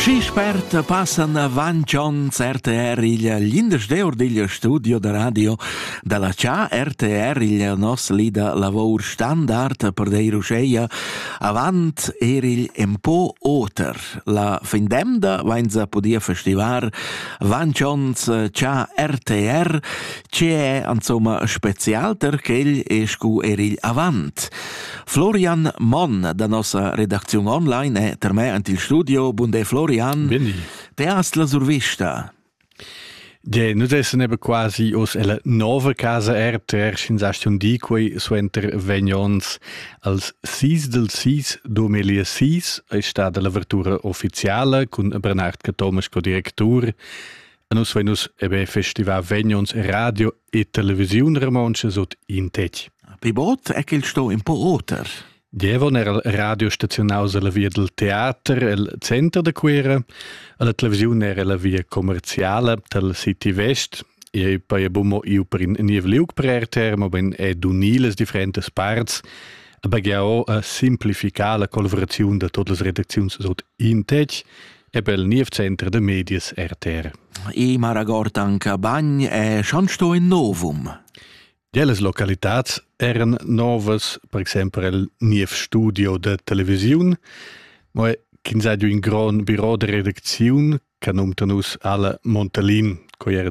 Schi spert passan avant onns RTR il l'indesch eur digl studio da radio dalla CA RTR il nos lida lavor standard per deir uscheia avant er il empo oter. La fin demda vainza podia festivar avant onns CA RTR ce è insomma spezialter ch'el es cu er il avant. Florian Monn da nossa redacziun online è ter me ant il studio. Bunde Florian. Bindi. Te hast la survista. Je, nu desse nebe quasi os ella nova casa RTR sin station di quei suenter vegnons als 6 del 6 2006 è stata l'avertura ufficiale con Bernard Thomas co directur. A nus venus ebe festival vegnons radio e televisiun romontscha sut in tec. Pi bod è quel sto un po oter. Dievon era radiostaziunaus alla via del teater el center de Cuera, alla televisiun era la via commerciale del City West, e poi abbiamo io per in niev liug per RTR, ma ben è d'uniles differentes parts, aber ja auch a simplificare la collaborazione da todas las redakzions sot in tec, Ebel niev center de medias RTR. E Maragortanca bagn è schon sto in novum. Delles localitats eran novas, per exempel il niev studio de televisiun, ma quinsadio in gran bureau de redacziun, che num nus alla Montalin, co era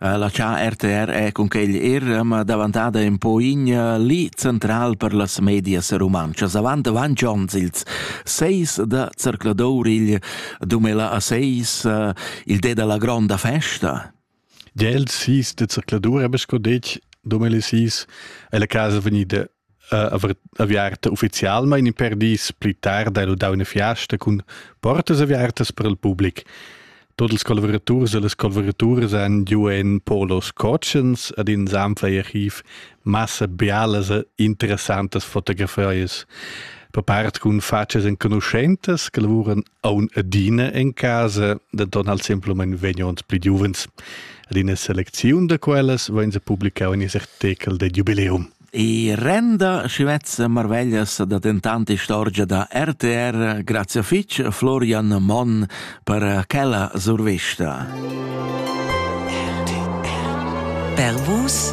La cha RTR è cunquegl er ma davantada ün po in li central per las medias rumantschas. Avant vantg ons, ils seis da zercladour igl dumela a seis il de da la gronda festa. Gia il seis da zercladour, habe ich sco detg, dumela seis è la casa vegnida aviarta ufficialmain in per dis pli tard hai ludà una fiasta cun portas aviartas per il public. Tot ils collaboraturs e les collaboraturas han giu en polos cotschens ad in sanflai archiv massa bialas e interessantas fotografias per part cun facas enconuschentas che lavuran Aun adina en casa da donn al semplamein vegnond pli giuvens. Ad ina selecziun da quellas vegn se publicau in artekel de jubileum. I renda schivezza marveglias da dentant istorgia da RTR. Grazie fitch, Florian Monn, per quella survista. Per vus,